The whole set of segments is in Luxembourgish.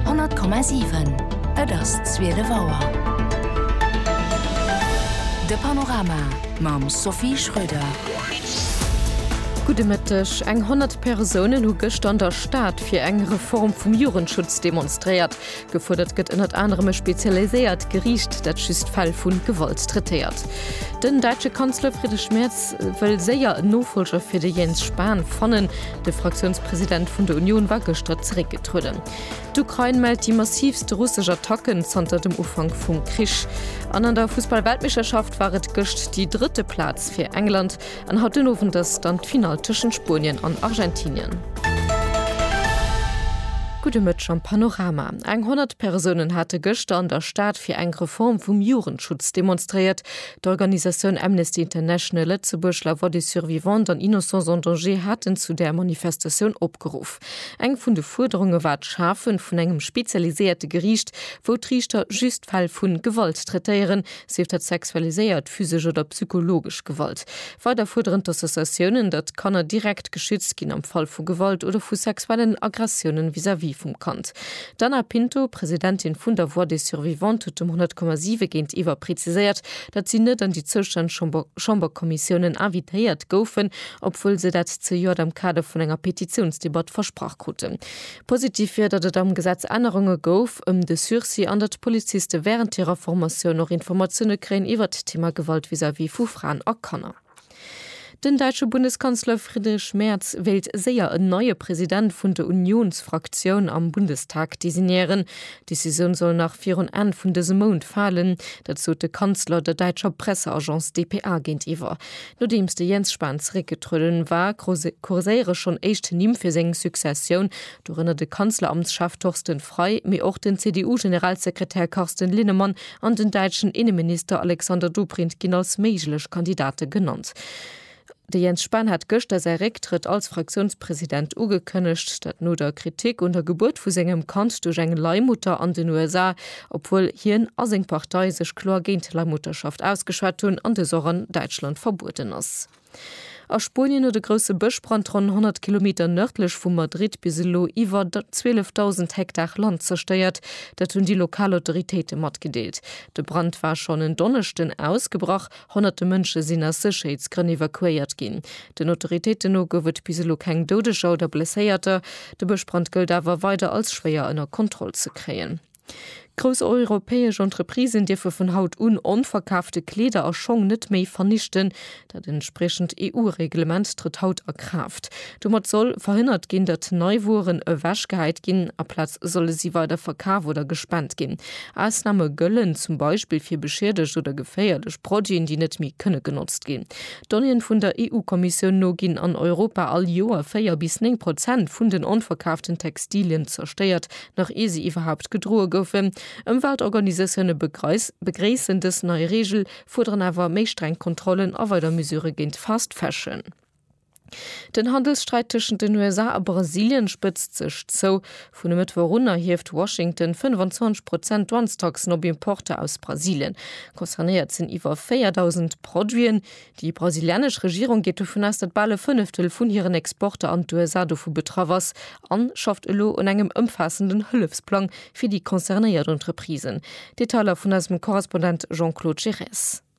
100,7 Et ass zwielef Auer. De Panorama mam Sophie Schröder. Gudde Mëtteg. Eng 100 Persounen hu gëschter an der Stad fir eng Reform vum Jugendschutz demonstréiert. Gefuerdert gëtt ënnert anerem e spezialiséiert Geriicht, dat just Fäll vu Gewalt traitéiert. Den däitsche Kanzler Friedrich Merz wëll séier en Nofollger fir de Jens Spahn fannen. De Fraktiounspresident vun der Unioun war gëschter zeréckgetrueden. D'Ukrain mellt déi massiivst russesch Attacken zanter dem Ufank vum Krich. An an der Fussball-Weltmeeschterschaft war et gëscht déi drëtte Plaz fir England. An haut den Owend ass dann d'Finall tëschent Spuenien an Argentinien. Gudde Mëtteg am Panorama. Eng 100 Persounen hate gëschter an der Stad fir eng Reform vum Jugendschutz demonstréiert. D'Organisatioun Amnesty International Lëtzebuerg, La Voix des Survivantes an Innocents en Danger haten zu där Manifestatioun opgeruff. Eng vun de Fuerderunge war d'Schafe vun engem spezialiséierte Geriicht, wou d'Riichter just Fäll vu Gewalt traitéieren, sief dat sexualiséiert, physesch oder psychologesch Gewalt. Weider fuerderen d'Associatiounen, datt d'Kanner direkt geschützt ginn am Fall vu Gewalt oder vu sexuellen Aggressiounen vis-à-vis vum Kand. D'Ana Pinto, Presidentin vun der Voix des Survivantes, huet dem 100,7 géintiwwer preziséiert, datt si net an déi zoustänneg Chamberkommissiounen invitéiert goufen, obwuel se dat zejoert am Kader vun enger Petitiounsdebatt versprach kruten. Positiv wier, datt et am Gesetz Ännerunge gouf ëm de Sursis an datt d'Poliziste wärend hirer Formatioun och Informatioune kréien iwwert d'Thema Gewalt vis-à-vis vu Fraen a Kanner. Den däitsche Bundeskanzler Friedrich Merz wéilt séier en neie President vun de Unionsfraktioun am Bundestag designéieren. D'Decisioun soll nach virun Enn vun dësem Mount falen. Dat sot de Kanzler der däitscher Presseagence dpa géintiwwer. Nodeems de Jens Spahn zeréckgetrueden war, kurséiere schonn éischt Nimm fir seng Successioun, dorënner de Kanzleramtschef Torsten Frei, mee och den CDU-Generalsekretär Carsten Linnemann an den däitschen Inneminister Alexander Dobrindt ginn als méiglech Kandidate genannt. De Jens Spahn hat gëschter säi Récktrëtt als Fraktiounspresident ugekënnegt. Dat no der Kritik un der Gebuert vu sengem Kand duerch eng Leihmutter an den USA, obwuel hien a seng Partei sech kloer géint d'Leihmutterschaft ausgeschwat hunn an dës och an Däitschland verbueden ass. A Spuenien huet e grousse Bëschbrand ronn 100 Kilometer nërdlech vu Madrid bis elo iwwer 12.000 Hektar Land zerstéiert. Dat hunn déi lokal Autoritéite matgedeelt. De Brand war schonn en Donneschden ausgebrach. Honnerte Mënsche sinn aus Sécherheetsgrënn evakuéiert ginn. Den Autoritéiten no gouf et bis elo keng Doudeger oder Blesséierter. De Bëschbrand gëllt awer weider als schwéier ënner Kontroll ze kréien. Grouss europäesch Entreprisen dierfe vun haut un onverkaafte Kleeder a Schong net méi vernichten. Dat entspriechend EU-Reglement trëtt haut a Kraaft. Domat soll verhënnert ginn, datt nei Wueren ewechgehäit ginn. Aplaz solle si weider verkaf oder gespent ginn. Ausname gëllen zum Beispill fir beschiedegt oder geféierlech Produiten, déi net méi kënne genotzt ginn. Donnéeën vun der EU-Kommissioun no ginn an Europa all Joer 4 bis 9 Prozent vun den onverkaaften Textilien zerstéiert, nach ier se iwwerhaupt gedroe goufen. Ëmweltorganisatioune begréissen dës nei Reegel, fuerderen awer méi streng Kontrollen a weider Mesurë géint Fast Fashion. Den Handelssträit tëschent den USA a Brasilien spëtzt sech zou. Vun e Mëttwoch un erhieft Washington 25 Prozent Douanestaxen op Importer aus Brasilien. Concernéiert sinn iwwer 4.000 Produiten. Déi brasilianesch Regierung geet dovun aus, datt bal e Fënneftel vun hiren Exporter an d'USA dovu betraff ass a schafft elo un engem ëmfaassenden Hëllefsplang fir déi concernéiert Entreprisen. Detailer vun eisem Korrespondent Jean-Claude Giresse.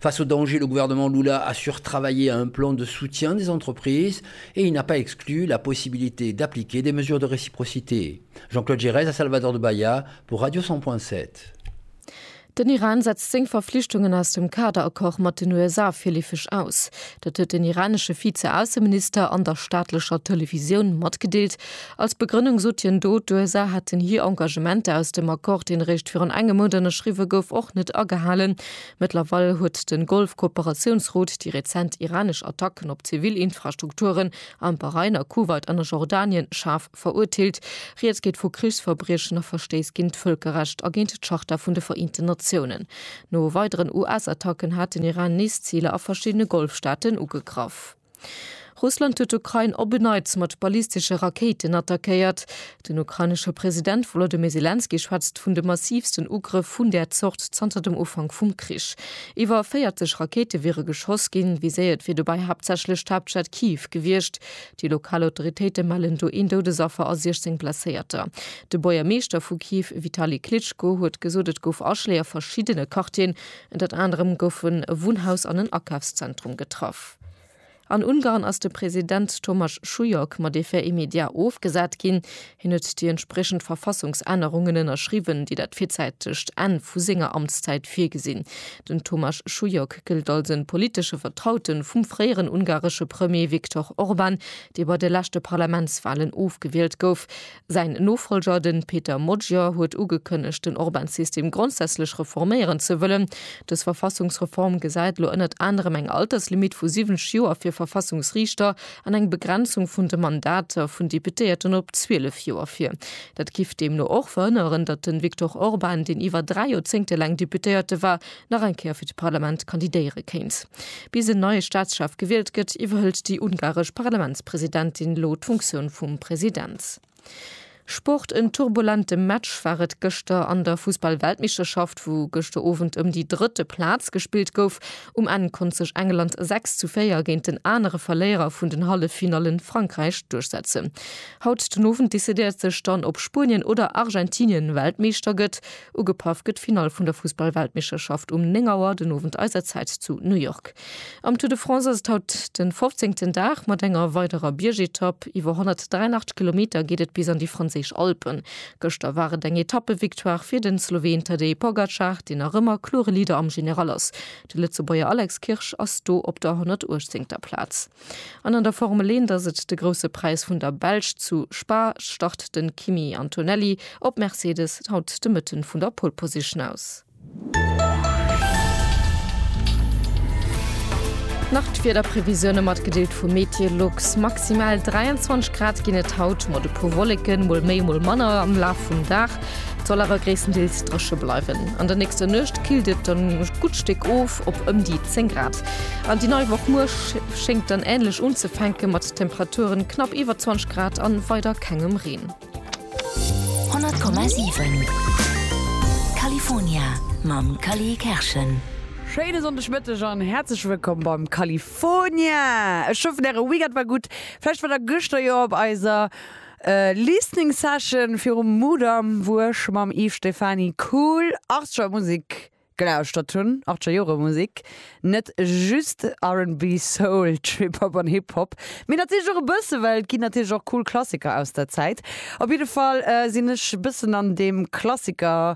Face au danger, le gouvernement Lula a sur travaillé à un plan de soutien des entreprises et il n'a pas exclu la possibilité d'appliquer des mesures de réciprocité. Jean-Claude Giresse a Salvador de Bahia pour Radio 100.7. Den Iran setzt seng Verflichtungen aus dem Kader-Accord mat den USA virleefeg aus. Dat huet den iranesche Vize-Ausseminister an der staatlecher Televisioun matgedeelt. Als Begrënnung sot hien do, d'USA hätten hir Engagementer aus dem Accord, deen eréischt virun engem Mount ënnerschriwwe gouf, och net agehalen. Mëttlerweil huet de Golf-Kooperatiounsrot déi rezent iranesch Attacken op zivil Infrastrukturen am Bahrain, a Kuwait an a Jordanien schaarf verurteelt. Rieds geet vu Krichsverbriechen a Verstéiss géint d'Vëlkerrecht a géint d'Charta vun de Vereenten Natiounen. No weideren US-Attacken hat den Iran nees Ziler a verschiddene Golfstaaten ugegraff. Russland huet d'Ukrain op en Neits mat ballistesche Rakéiten attackéiert. Den ukrainesche President Wolodymyr Selenskyj schwätzt vun de massivsten Ugrëff vun där Zort zanter dem Ufank vum Krich. Iwwer 40 Rakéite wiere geschoss ginn. Viséiert wier dobäi haaptsächlech d'Haaptstad Kiew gewiescht. Déi lokal Autoritéite mellen do een Doudesaffer a 16 Blesséierter. De Buergermeeschter vu Kiew Vitali Klitschko huet gesot, et gouf Aschléi a verschiddene Quartieren. Ënnert anerem gouf e Wunnhaus an en Akafszentrum getraff. An Ungarn ass de President Thomas Schulyok mat effet immédiat ofgesat ginn. Hien huet déi entspriechend Verfassungsännerungen ënnerschriwwen, déi dat virzäitegt Enn vu senger Amtszäit virgesinn. Den Thomas Schulyok gëllt als e politesche Vertraute vum fréieren ungaresche Premier Viktor Orban, dee bei de leschte Parlamentswalen ofgewielt gouf. Säin Nofolger, de Peter Magyar, huet ugekënnegt, den Orban-System grondsätzlech reforméieren ze wëllen. Dës Verfassungsreform gesäit elo ënnert anerem eng Alterslimitt vu 70 Joer fir Verfassungsriichter an eng Begrenzung vun de Mandater vun Deputéierten op 12 Joer vir. Dat giff deemno och verhënneren, datt de Viktor Orban, deen iwwer dräi Joerzéngte laang Deputéierte war, nach eng Kéier fir d'Parlament kandidéiere kéint. Bis en neie Staatschef gewielt gëtt, iwwerhëlt déi ungaresch Parlamentspresidentin elo d'Funktioun vum President. Sport, En turbulente Match war et gëschter an der Fussball-Weltmeeschterschaft, wou gëschter Owend ëm déi drëtte Plaz gespillt gouf. Um Enn konnt sech England 6 zu 4 géint den anere Verléierer vun den Halleffinallen, Frankräich, duerchsetzen. Haut den Owend decidéiert sech dann, ob Spuenien oder Argentinien Weltmeeschter gëtt. Ugepaff gëtt d'Finall vun der Fussballweltmeeschterschaft um 9 Auer den Owend eiser Zäit zu New York. Am Tour de France ass et haut den fofzéngten Dag mat enger weiderer Biergetapp. Iwwer 183 Kilometer geet et bis an déi franséisch Alpen. Gëschter war et eng Etappevictoire fir den Sloween Tadej Pogacar, deen nach ëmmer klore Leader am General ass. De Lëtzebuerger Alex Kirsch ass do op der 118. Plaz. An an der Formel 1 ass et de Grousse Präis vun der Belsch. Zu Spa start de Kimi Antonelli op Mercedes haut de Mëtten vun der Pole Position aus. Nach d'Wiederprevisioune mat gedeelt vu Meteolux. Maximal 23 Grad ginn et haut, mat e puer Wolleken, mol méi mol manner am Laf vum Dag. Et soll awer gréisstendeels dréche bleiwen. An der nächster Nuecht killt et dann e gutt Stéck of op ëm déi 10 Grad. An déi nei Woch muer schéngt dann änlech unzefänke mat Temperaturen knapp iwwer 20 Grad a weider kengem Reen. 100,7 California mam Cally Kerschen. Schéine Sonndegmëtteg an häerzlech wëllkomm beim California! Ech hoffen äre Weekend war gutt. Vläicht war der gëschter jo op eiser. Listening Session virum Mudam wou ech mam Yves Stephany cool 80er Musek gelauschtert hunn, 80er Jore Musek, net just RnB, Soul, Trip Hop an Hip Hop, mee natierlech och e bësse well et ginn natierlech och cool Klassiker aus der Zäit. Op jidde Fall sinn ech e bëssen an deem Klassiker,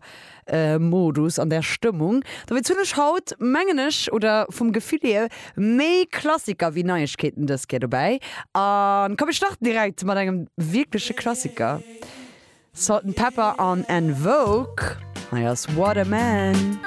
Modus, an där Stëmmung. Dowéinst hunn ech haut, mengen ech, oder vum Gefill hier, méi Klassiker wéi Neiegkeeten dës Kéier dobäi. A komm, mir starten direkt mat engem wierkleche Klassiker, Salt-N-Pepa an En Vogue. Hei ass What a Man.